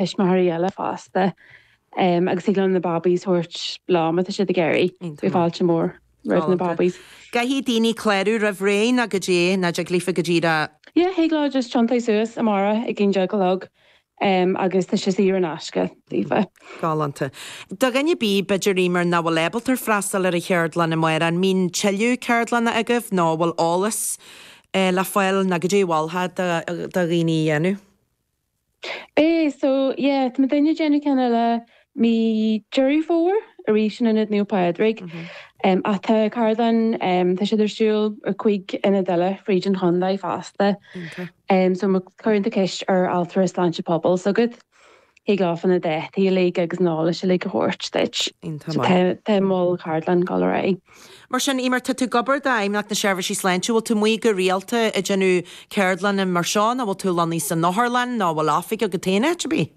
tuismitheoirí eile fosta agus thig leo na babaí's a thabhairt leo má tá siad ag iarraidh. Beidh fáilte mhór roimh na babaí's. An gcaithfidh daoine clárú roimh ré nó goidé, nó an dtig leofa go díreach. Yeah, thig leo just tiontaigh suas amárach ag aon déag a chlog agus tá sé saor in aisce, daofa. Galánta. Do dhuine ar bith b'fhéidir, Eimear, nach bhfuil ábalta freastal ar an cheardlann amárach, an mbíonn tuilleadh ceardlanna agaibh nó bhfuil eolas le fáil nó goidé a mholfá do dhaoine a dhéanamh? Aye, so, yeah, tá muidinne ag déanamh ceann eile mí Deireadh Fómhair, arís in Ionad Naomh Pádraig. Em, ach tá ceardlann, em, tá siad ar siúl i gcúig ionad eile fríd an chondae fosta. Em, so, má chuireann tú ceist ar Altra Sláinte Pobail s'agat, thig leofa na dátaí uilig agus an eolas uilig a thabhairt duit. So tá, tá moll ceardlann dul ar aghaidh. Mar sin, Eimear, tá tú ag obair d'Fheidhmeannacht na Seirbhísí Sláinte, bhfuil tú amuigh go rialta ag déanamh ceardlanna mar seo nó bhfuil tú lonnaithe san otharlann nó bhfuil oifig agat féin áit ar bith?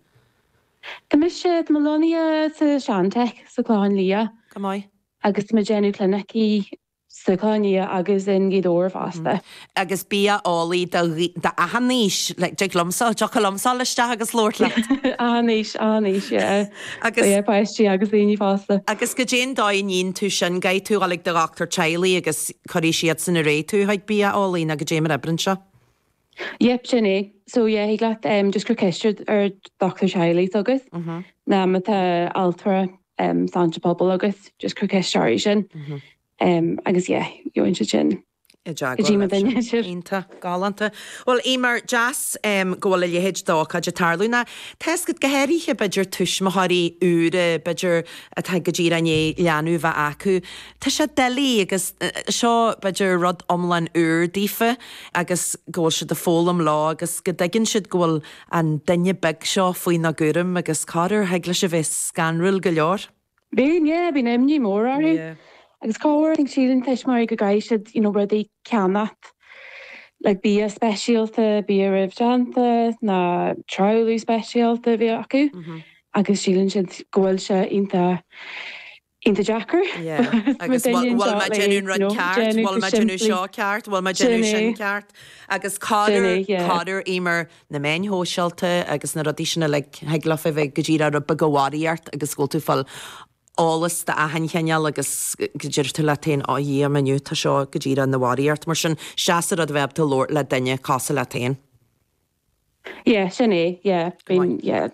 Anois, tá mé lonnaithe sa sean-Tech sa Chlochán Liath. Go maith. Agus tá mé ag déanamh clinicí sa Chlochán Liath agus in Gaoth Dobhair fosta. agus bia-eolaí d'achan aois, like dtiocfadh liomsa, thiocfadh liomsa ghabháil isteach agus labhairt leat! achan aois, achan aois yeah. Agus. So yeah, páistí agus daoine fásta. Agus goidé an dóigh a ndíon tú sin, gabh tú chuig do dhochtúir teaghlaigh agus cuirfidh siadsan ar aghaidh tú chuig bia-eolaí nó goidé mar a oibríonn seo? Yep, sin é. So yeah, thig leat em just cur ceist ar ar dhochtúir teaghlaigh s'agat nó má tá altra em sláinte pobail agat just cur ceist orthu sin. Em agus yeah, gheobhaidh siadsan. i dteagmháil le sinn. Iontach. Galánta. Bhuel, Eimear, deas go bhfuil a leithéid d'ócáid ag tarlú, nó tá's agat, go háirithe b'fhéidir tuismitheoirí úra, b'fhéidir, atá go díreach i ndiaidh leanbh a bheith acu. Tá sé doiligh agus seo b'fhéidir rud iomlán úr daofa agus go bhfuil siad ag foghlaim leo agus go dtuigeann siad go bhfuil an duine beag seo faoina gcúram agus corruair thig leis a bheith scanrúil go leor. Bíonn, yeah, bíonn imní mhór orthu. Yeah. Agus corruair, I think, síleann tuismitheoirí go gcaithfidh siad, you know, rudaí a cheannacht, like bia speisialta, bia roimh déanta, nó trealamh speisialta a bheith acu. Mhm. Agus síleann siad go bhfuil sé iontach, iontach deacair. Yeah. Agus bhfuil, bhfuil mé ag déanamh an rud ceart, bhfuil mé ag déanamh seo ceart, bhfuil mé ag déanamh sin ceart. Agus cairde, cairde Eimear na meáin shóisialta agus na rudaí sin uilig, thig leofa a bheith go díreach rud beag barraíocht agus go bhfuil tú ag fáil eolas d'achan chineál agus go ndeir tú leat féin, 'á Dhia, inniu tá seo go díreach ina bharraíocht'. Mar sin, is deas an rud a bheith ábalta labhairt le duine, cosúil leat féin. Yeah, sin é, yeah, I mean, yeah.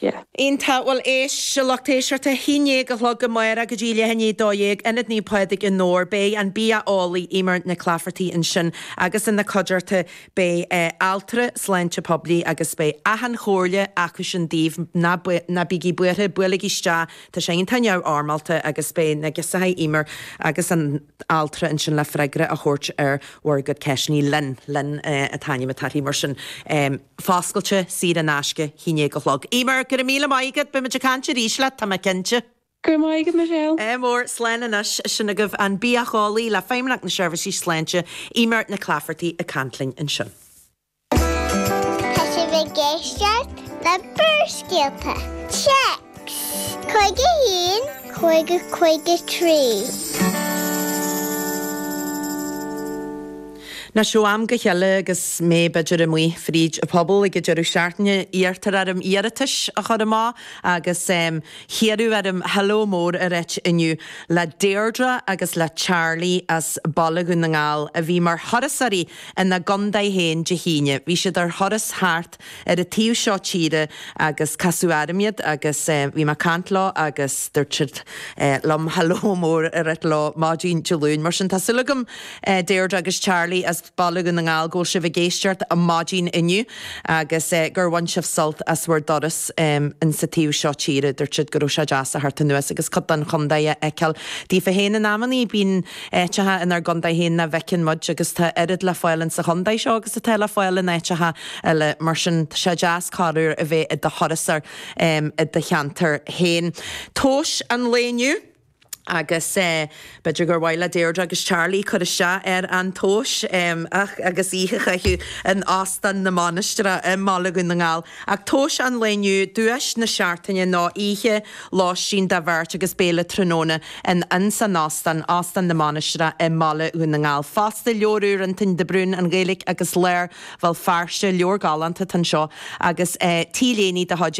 yeah. Iontach. Bhuel, éist, a lucht éisteachta haon déag a chlog amárach go dtí leath i ndiaidh a dó dhéag, Ionad Naomh Pádraig i nDobhar. Beidh an bia-eolaí, Emer Nic Laifeartaigh ansin agus ina cuideachta beidh altra sláinte poiblí agus beidh achan chomhairle acusan daoibh, ná ná bígí buartha, buailigí isteach, tá sé iontach neamhfhoirmeálta agus beidh na girseachaí, Emer agus an altra ansin le freagra a thabhairt ar bhur gcuid ceisteannaí linn, linn an t-ainm atá uirthi mar sin. Foscailte, saor in aisce, haon déag a chlog. Emer, Go raibh míle maith agat, beimid ag caint arís leat, tá mé cinnte. Go raibh maith agat, Michelle. Emer, Slán anois. Sin agaibh an bia-eolaí le Feidhmeannacht na Seirbhísí Sláinte, Emer Nic Laifeartaigh ag caint linn ansin. Tá sibh ag éisteacht le Barrscéalta, téacs Caoga a haon, caoga, caoga trí. Anois ó am go chéile agus mé b'fhéidir amuigh fríd an phobal ag an deireadh seachtaine iarrtar orm iarratais a chur amach agus hiarradh orm hello mór a rá inniu le Deirdre agus le Charlie as Baile Dhún na nGall a bhí mar thurasóirí ina gcontae féin Dé hAoine. Bhí siad ar thuras thart ar an taobh seo tíre agus casadh orm iad agus bhí mé ag caint leo agus dúirt siad liom hello mór a rá leo maidin Dé Luain. Mar sin, tá súil agam, Deirdre agus Charlie as Baile Dhún na nGall, go bhfuil sibh ag éisteacht maidin inniu agus gur bhain sibh sult as bhur dturas in sa taobh seo tíre. Dúirt siad go raibh sé deas teacht anuas agus cuid den chontae a fheiceáil. Daofa féin, in amannaí bíonn áiteacha inár gcontae féin nach bhfeiceann muid agus tá oiread le fáil in sa chontae seo agus atá le fáil in áiteacha eile. Mar sin, tá sé deas corruair a bheith i do thurasóir i do cheantar féin. Tomhas an lae inniu agus b'fhéidir gur mhaith le Deirdre agus Charlie cur isteach ar an tomhas agus oíche a chaitheamh in Óstán na Mainistreach i mBaile Dhún na nGall. Ach tomhas an lae inniu, duais na Seachtaine ná oíche lóistín do bheirt agus béile tráthnóna in ins an Óstán, Óstán na Mainistreach i mBaile Dhún na nGall. Fosta, leabhar úr Fhionntáin de Brún, An Ghaeilge agus Lár Bhéal Feirste, leabhar galánta atá anseo agus T-léine de chuid